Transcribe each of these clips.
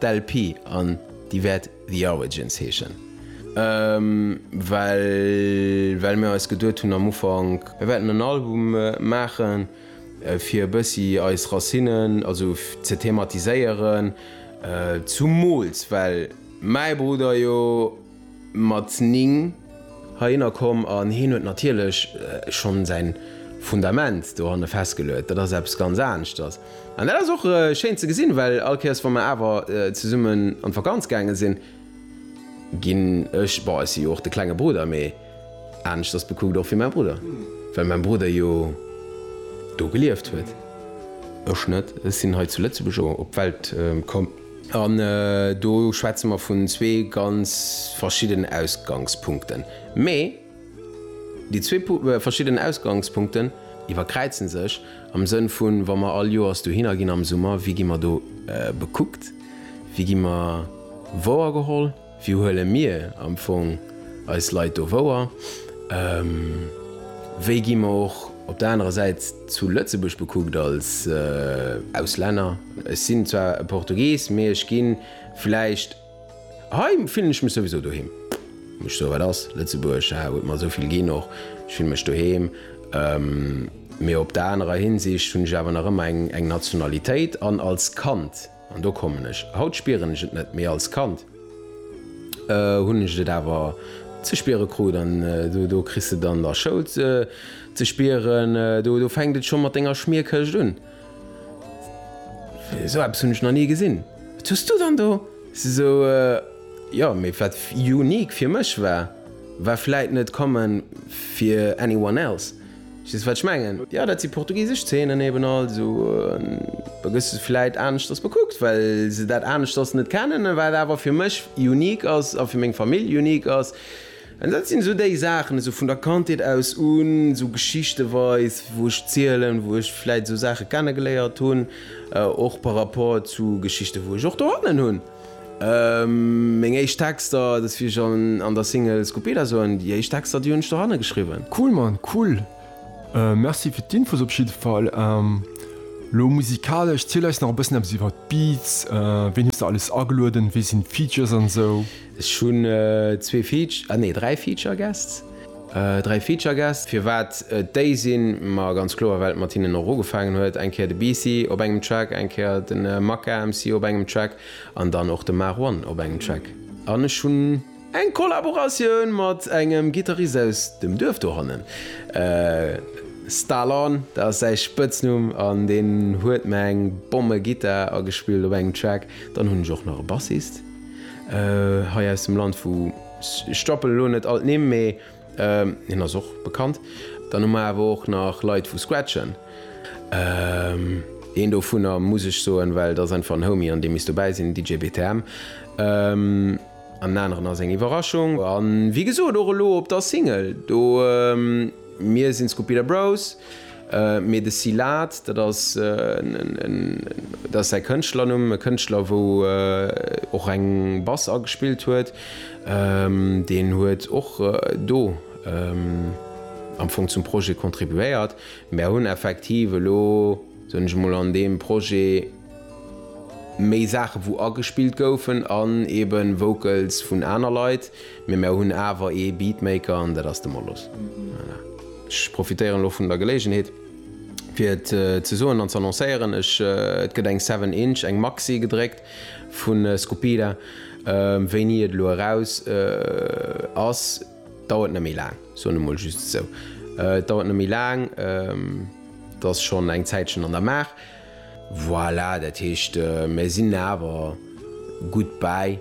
D'LP an déi wäert The Origins heeschen, well well mir eis geduet hunn am Ufank, mir wäerten en Album maachen, fir e bëssi eis Racinnen also ze thematiséieren, zumools well mäi Brudder jo, mat 9 heihinner komm an hien huet natierlech schonn säin Fundament dohanne festgeluet. Dat ass eppes ganz aneschters an dat ass och schéin ze gesinn, well all Kéiers wa mer awer zesummen an d'Vakanz gaange sinn, ginn ech, bon ech si jo och de klenge Brudder, mee aneschters bekuckt och wéi mäi Brudder, well mäi Brudder jo do gelieft huet, ech net, ech sinn hei zu Lëtzebuerg op d'Welt komm. An do schwätze mer vun zwee ganz verschiddenen Ausgangspunkten. Mee déi zwee verschiddenen Ausgangspunkten iwwerkräize sech am Sënn vu wa mer all Joers dohinner ginn am Summer, wéi gi mer do bekuckt, wéi gi mer wouergeholl? Wéi huele mir am Fong eis Leit do wouer? Wéi gi mer och op der anerer Säit zu Lëtzebuerg bekuckt als Auslänner? Ech sinn zwar e Portugies, mee ech gi vläicht, hei fillen ech mech souwisou doheem. Mech soe wat ass, Lëtzebuerg huet mer esou vill ginn, och ech fille mech doheem. Mee op der anerer Hinsicht hunn ech awer nach ëmmer eng Nationalitéit an als Kand, An do kommen ech. Haut spieren ech et net, mee als Kand hunn ech et awer ze spiere krut. An do kriss de dann der Schoul ze spieren, do fänkt et scho mat denger Schmierkëscht un. Esou eppes hunn ech nach ni gesinn. Wat hues du dann do? Esou, jo, mee wat unique fir mech war, war vläit net common fir anyone else. Verstees wat ech mengen? Jo dat si portugisesch Zeenen eben, also da gëss de vläit aneschters bekuckt well se dat aneschters net kennen, wat awer fir mech unique ass a fir meng Famill unique ass. An dat sinn esou déi Saachen, esou vun der Kandheet aus un, esou geschichtenweis wou ech zielen, wou ech vläit esou Saache kennegeléiert hunn, och par rapport zu Geschichten wou ech och dohannen hunn. Meng éischt Texter, dat wéi ech an der Single Scupida soen, déi éischt Texter déi hunn ech doranne geschriwwen. Cool Mann, cool! Merci fir d'Infos op jidde Fall. Lo musikalesch, ziel eis nach e bëssen eppes iwwert d'Beats, ween hues de alles agelueden, wee sinn d'Features an esou? Ech hunn zwee Feature, ah nee 3 Feature Guests. Dräi Feature Guest, firwat et déi sinn? Ma ganz kloer, well et mat hinnen och ugefaangen huet. Eng Kéier de Beasy op engem Track, eng Kéier de Macca MC op engem Track an dann och de Marwan op engem Track. An ech hunn eng Kollaboratioun mat engem Gittarist aus dem Duerf dohannen, Stalon, dat ass säi Spëtznumm, an deen huet mer eng Bommegittar agespillt op engem Track. Dann hunn ech och nach e Bassist hei aus dem Land, vu. Ech stoppen elo net all d'Nimm, mee hien ass och bekannt. Dann hu mer awer och nach Leit vu Scratchen. Een dovunner muss ech soen, well et ass einfach en Homie an dee misst dobäi sinn, DJ BTM. An den aneren ass eng Iwwerraschung. A wéi gesot och elo op der Single do. Mir sinn d'Scupira Bros, mee de Silat, dat ass säi Kënschtlernumm, e Kënschtler wou och eng Bass agespillt huet, deen huet och do am Fong zum Projet contribuéiert. Mär hunn effektiv elo, soen ech emol, an deem Projet méi Saache wou agespillt goufen an eebe Vocals vun aner Leit, Mee mär hunn awer ee Beatmaker an dat ass de Molos. Voilà. Ech profitéieren elo vun der Geléigenheet fir et ze soen an z'annoncéieren, ech, et gëtt eng Seven Inch, eng Maxi gedréckt vu Skupida. Wéini et elo eraus ass, dauert net méi laang, soen emol just esou. Et dauert net méi laang, et ass schonn eng Zäitchen an der Maach. Voilà, dat heescht, mär sinn awer gutt bäi,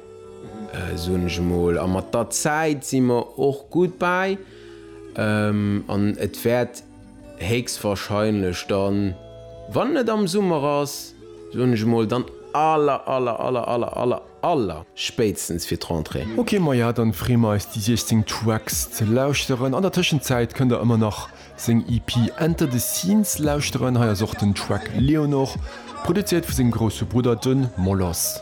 soen ech emol. A mat der Zäit si mer och gutt bäi. An et wäert héchstwahrscheinlech dann, wann et am Summer ass, soen ech emol, dann aller, aller, aller, aller, aller, Aller spéitstens fir d'Rentrée. Ok maja dann free mer eis déi 16 Tracks ze lauschteren. An der Tëschenzäit kënnt der ëmmer nach seng EP Enter the Scenes lauschteren. Hei ass och den Track Leonor, produzéiert vu sengem grousse Brudder, de Moloss.